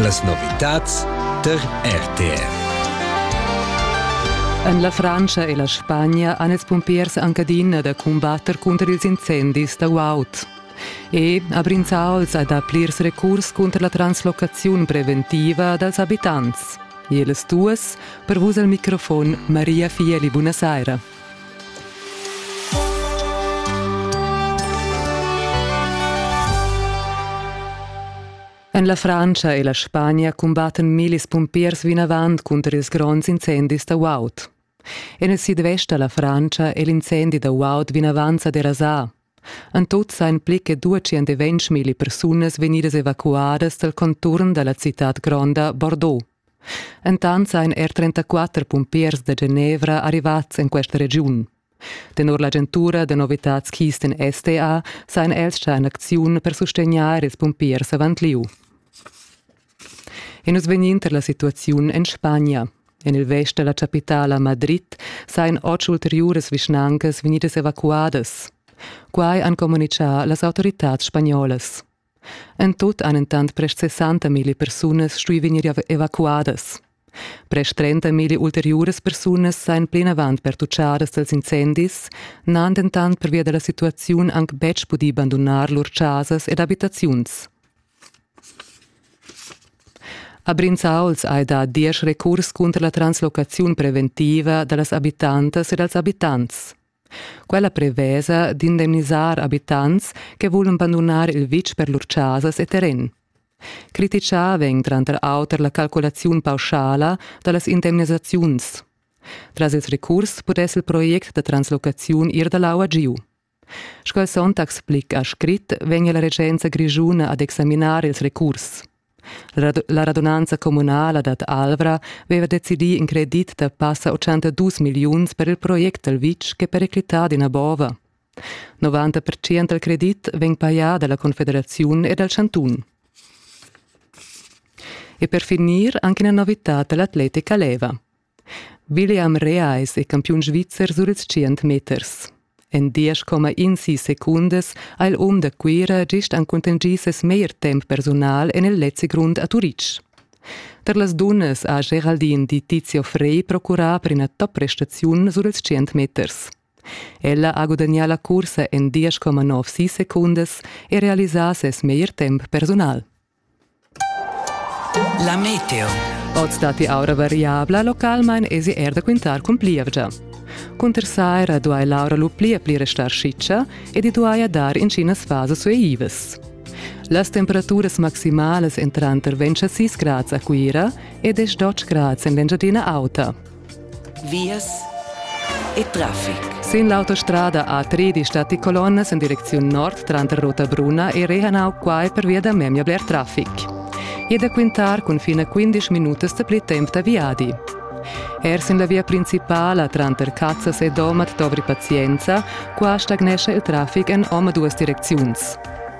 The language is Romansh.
Las novitads tar RTR. En la Frantscha e la Spagna han ils pumpiers anc adina da cumbatter cunter ils incendis da guaud. E a Brinzauls ha dà plirs recurs cunter la translocaziun preventiva dals abitants. Ils duas, per vus al microfon Maria Fieli, buonasera. En la Frantscha e la Spagna cumbattan millis pumpiers vinavant cunter ils gronds incendis da guaud. En il sidvest da la Frantscha è l'incendi da guaud vinavant sa derasà. En tut sain pli che 200 persunas vegnidas evacuadas dal conturn da la citad gronda Bordeaux. Entant sajan er 34 pumpiers da Genevra arrivads en questa regiun. Tenor l'agentura da novitads Kisten STA sajan els già en acziun per sustegnair ils pumpiers avant lieu. E nus vegnind tar la situaziun en Spagna. En il vest da la chapitala Madrid sajan otg ulteriuras vischnancas vegnidas evacuadas. Quai han communitgà las autoritads spagnolas. En tut han entant prest 60 milli persunas stuì vegnir evacuadas. Prest 30 milli ulteriuras persunas sajan plinavant pertuchadas dals incendis, n'han dentant pervia da la situaziun anc betg pudì bandunar lur chasas ed abitaziuns. A Brinzauls hai dà diesch recurs cunter la translocaziun preventiva da las abitantas e dals abitants. Quella prevesa d'indemnisar abitants che vulan bandunar il vitg per lur chasas e terren. Criticà vegn tranter auter la calculaziun pauschala da las indemnisaziuns. Tras ils recurs pudess il project da translocaziun ir da l'aua giu. Sco il Sonntag explica a scrit vegn la regenza grischuna ad examinar ils recurs. La radunanza communala dad Alvra veva decidì in credit da passa 82 milliuns per il project dal vitg ch'è periclità d'ina bova. 90% dal credit vegn pajà dalla Confederaziun e dal chantun. E per finir anche una novità dall'atletica leva. William Rea es il campiun svizzer sur ils tschient meters. En diesch comma insi secundas ha il um da Cuira gist han contingì ses meglier temp persunal en il lezzi grund a Turitg. Tar las dunnas ha Geraldin di Tizio Frey procurà per ina top prestaziun sur ils tschient meters. Ella ha gudagnà la cursa en 10,9 secundas e realisà ses meglier temp persunal. La meteo. Oz datti aura variabla, localmain èsi er da quintar cun plievgia. Cunter saira duai l'aura lu pli e pli restar schitscha ed i duaja dar intginas fasas sueivas. Las temperaturas maximalas èn tranter 26 grads a Cuira ed 12 grads en l'Engiadina Auta. Vias e traffic. Sin l'autostrada A3 di Stati Colonnas in direcziun nord tranter Ruta Bruna e Rehanau quai pervia da memia bler traffic. E da quintar cun fine 15 minutas da pli temp da viadi. Er sin la via principala tranter Cazzas e Domat dovri pazienza, qua stagnescha il traffic en omaduas direcziuns.